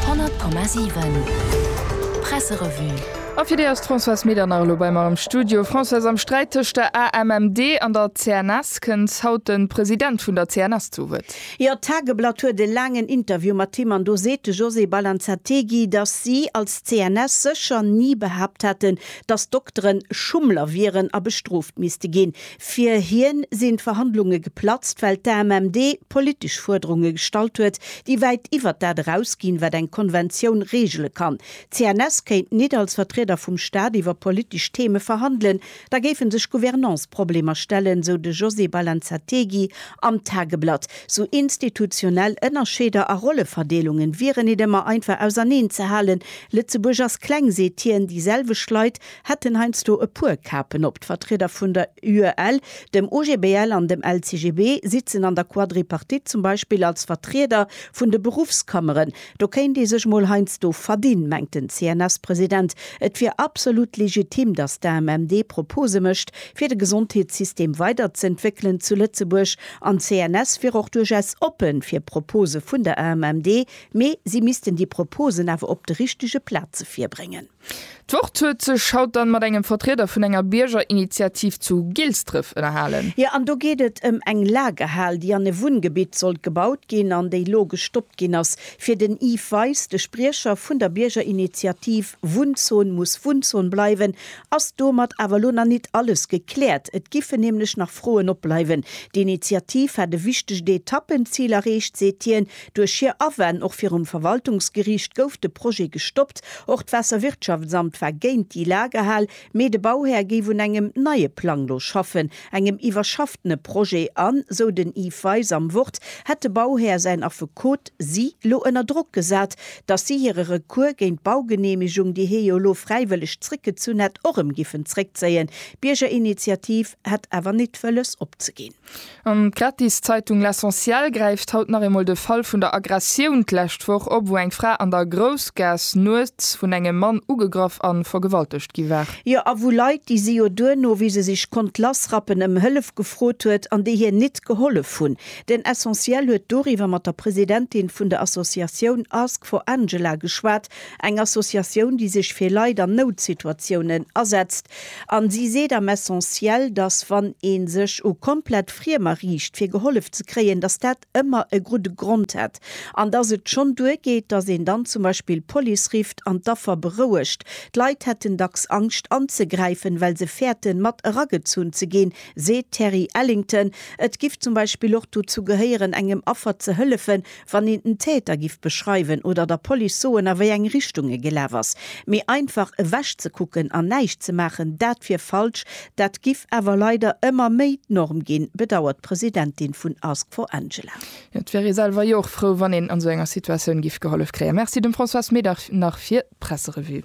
100,7 Presserevue A fir déi ass d'Françoise Medernach elo bei mer am Studio. Françoise, am Sträit tëscht der AMMD an der CNS kënnt haut de President vun der CNS zu Wuert. Jo, d'Tageblatt huet e laangen Interview mat him an do seet de José Balanzategui, datt si als CNS sécher ni behaapt hätten, datt d'Dokteren Schummler wieren a bestrooft misste ginn. Fir hien sinn d'Verhandlunge geplatzt, well d'AMMD politesch Fuerderunge gestallt huet, déi wäit iwwert dat eraus ginn, wat eng Konventioun regele kann. D'CNS kéint nit als Vertrieder vum Staat iwwer politesch Theme verhandelen, da géife sech Gouvernanceproblemer stellen, sou de José Balanzategui am Tageblatt. Sou institutionell Ënnerscheeder a Rolleverdeelungen wieren nit ëmmer einfach auserneen ze halen. Lëtzebuerg ass kleng, seet hien, déi selwecht Leit hätten heiansdo e puer Kapen op. D'Vertrieder vun der UEL, dem OGBL an dem LCGB sitzen an der Quadripartite zum Beispill als Vertrieder vun de Beruffskammeren. Do kéint ee sech mol heiansdo verdinn, mengt den CNS-President. Et wier absolut legitim, datt d'AMM déi Propose mécht, fir de Gesondheetssystem weiderzëentwéckelen zu Lëtzebuerg. An d'CNS wier och duerchaus oppe fir Propose vun der AMM, mee si missten déi Proposen awer op de richtege Plaze virbréngen. D'Wort huet sech haut dann mat engem Vertrieder vun enger Biergerinitiativ zu Gilsdref ënnerhalen. Jo, an do geet et ëm eng Lagerhal, déi an e Wunngebitt sollt gebaut ginn an déi lo gestoppt ginn ass, fir den Yves Weis, de Spriecher vun der Biergerinitiativ Wunnzon muss Wunnzon bleiwen, ass domat awer lo nach nit alles gekläert. Et giffen nämlech nach Froen opbleiwen. D'Initiativ hätt e wichtegt Etappenzil erreecht, seet hien, Duerch hir Awänn, och virum Verwaltungsgeriicht, gouf de Projet gestoppt. Och d'Waasserwirtschaftsamt war géint déi Lagerhal, mee de Bauhär géif un engem neie Plang lo schaffen, engem iwwerschaftene Projet. An, sou den Yves Weis am Wort, hätt de Bauhär, säin Affekot, si lo ënner Drock gesat, datt si hire Recours géint d'Baugeneemegung, déi hie jo lo fräiwëlleg zréckgezunn hätt, och erëm giffen zréckzéien. D'Biergerinitiativ hätt awer nit wëlles opzegin. An d'gratis Zeitung L'Essentiel gräift haut nach eemol de Fall vun der Aggressioun d'lescht Woch op, wou eng Fra an der Groussgaass nuets vun engem Mann ugegraff an vergewaltegt gi war. Jo, a wou Leit, déi si jo duerno, wéi se sech konnt lassrappen, ëm Hëllef gefrot huet an déi hir nit gehollef hunn. Den Essentiel huet doriwwer mat der Presidentin vun der Associatioun Ask for Angela geschwat, Eng Associatioun, déi sech fir Leit an Noutsituatiounen asetzt. A si seet am Essentiel, dass wann ee sech u komplett Friemer riicht, fir gehollef ze kréien, dass dat ëmmer e gudde Grond hätt an dass et schonn duergeet, dass een dann zum Beispill d'Police rifft an d'Affer berouegt. D'Leit hätten dacks Angscht anzegräifen, well se fäerten, mat eragezunn ze ginn, seet d'Terry Ellington. Et giff zum Beispill och dozou gehéieren, engem Affer ze hëllefen, wann een den Täter giff beschreiwen oder der Police soen a wéi eng Richtung e gelaf ass. Mee einfach ewech ze kucken an näischt ze maachen, dat wier falsch. Dat giff awer leider ëmmer méi d'Norm ginn, bedauert d'Presidentin vun Ask for Angela. Et wier ee selwer jo och frou, wann een an esou enger Situatioun giff gehollef kréien. Merci dem François Smeedhar nach fir d'Presserevue.